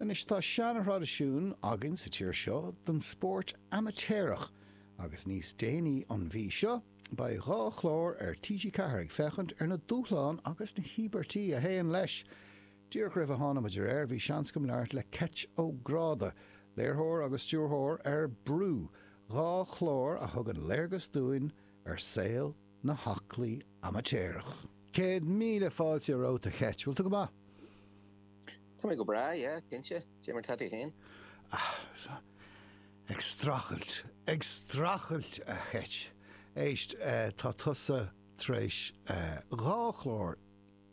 Anois tá seanthraidisiún againn sa tír seo den spórt amaitéarach agus níos déanaí an mhí seo beidh dhá chlár ar TG4 ag féachaint ar na dúshláin agus na híobairtí a théann leis. Díreach roimh a tháinimid ar aer bhí seans agam labhairt le Keith O'Grady, léirtheoir agus stiúrthóir ar Brú, dhá chlár a thugann léargas dúinn ar saol na haclaí amaitéarach. Céad míle fáilte romhat a Keith. Bhfuil tú go maith? Tá mé go breá, yeah, cinnte. Dé mar tá tú féin? Ah, ag strachailt, ag strachailt a Keith. Éist, tá tusa tar éis dhá chlár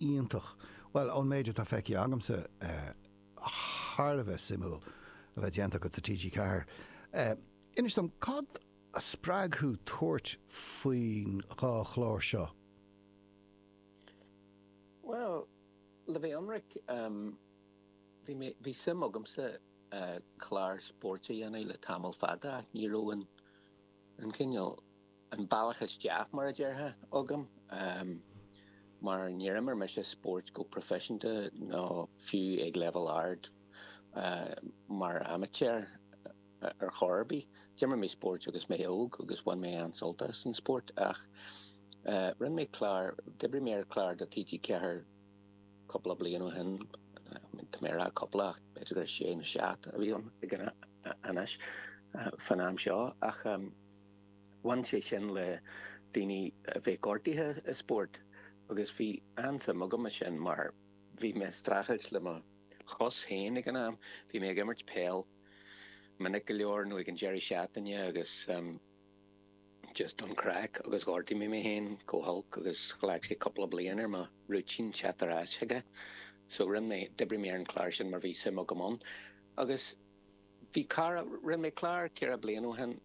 iontach, bhuel, ón méid atá feicthe agamsa, thar a bheith suimiúil a bheith déanta agat do TG4. Inis dom, cad a spreag thú tabhairt faoin dhá chlár seo? Bhuel, Le bheith ionraic, bhí mé, bhí suim agamsa clár spóirt a dhéanamh le tamall fada ach ní raibh an, an cineál, an bealach isteach, mar a déarfá, agam mar níor imir mise spóirt go proifisiúnta ná fiú ag leibhéal ard mar amaitéar. ar chor ar bith. D'imir mé spóirt agus mé óg agus bhain mé an-sult as an spórt ach rinne mé clár, d'oibrigh mé ar chlár do TG4 cúpla bliain ó shin, tá mé ag rá cúpla ach b'fhéidir gur sé nó seacht a bhí ann anois, fán am seo ach bhain sé sin le daoine a bheith gortaithe i spórt agus bhí an-suim agam i sin mar bhí mé ag streachailt le mo chos féin ag an am, bhí mé ag imirt peil. minic go leor nó ag an deireadh seachtaine agus just don craic agus ghortaigh mé mé féin go holc agus ghlac sé cúpla bliain ar mo rúitín teacht ar ais chuige so rinne mé, d'oibrigh mé ar an chlár sin mar bhí suim agam ann agus bhí cara, rinne mé clár ceithre bliana ó shin.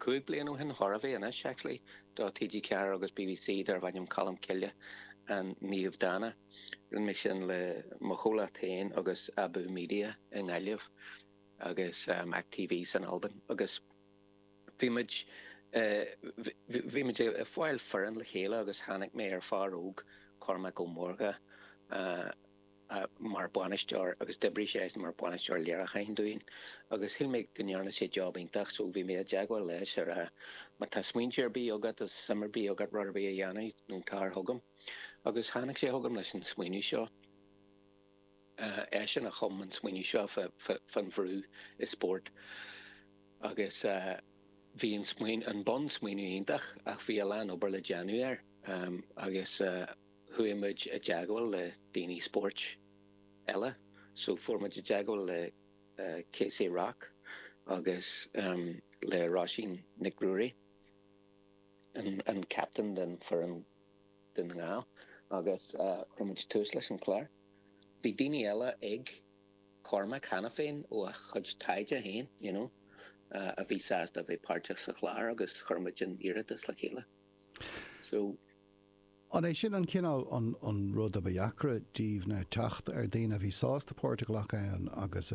Cúig bliain ó shin chóir a bheith anois, actually, do TG4 agus BBC darbh ainm Colm Cille An Naomh Dána. Rinne mé sin le mo chomhlacht féin agus Abú Media i nGaillimh agus Mac TV san Albain agus bhí muid eh, bhí muid ag fáil foireann le chéile agus tháinig mé ar fear óg, Cormac Ó Mórdha, eh, mar bhainisteoir agus d'oibrigh sé mar bhainisteoir léiriúcháin dúinn agus shíl mé go ndearna sé job iontach so bhí mé i dteagmháil leis ag rá má tá smaointe ar bith agat is suim ar bith agat rud ar bith a dhéanamh nó tar chugam agus tháinig sé chugam leis an smaoineamh seo eisean a chum an smaoineamh seo faoin bhrú i spórt agus bhí an bunsmaoineamh iontach ach bhí a lán obair le déanamh air agus. chuaigh muid i dteagmháil le daoine spóirt eile so fuair muid i dteagmháil le Casey Rock agus le Roisín Nic Ruairí, an captain d'fhoireann Dún na nGall agus chuir muid tús leis an chlár. Bhí daoine eile ag Cormac cheana féin ó a chuid taighde féin you know a bhí sásta a bheith páirteach sa chlár agus chuir muid an iarratas le chéile so. An é sin an cineál an rud ab deacra daoibh ná teacht ar daoine a bhí sásta páirt a ghlacadh ann agus a.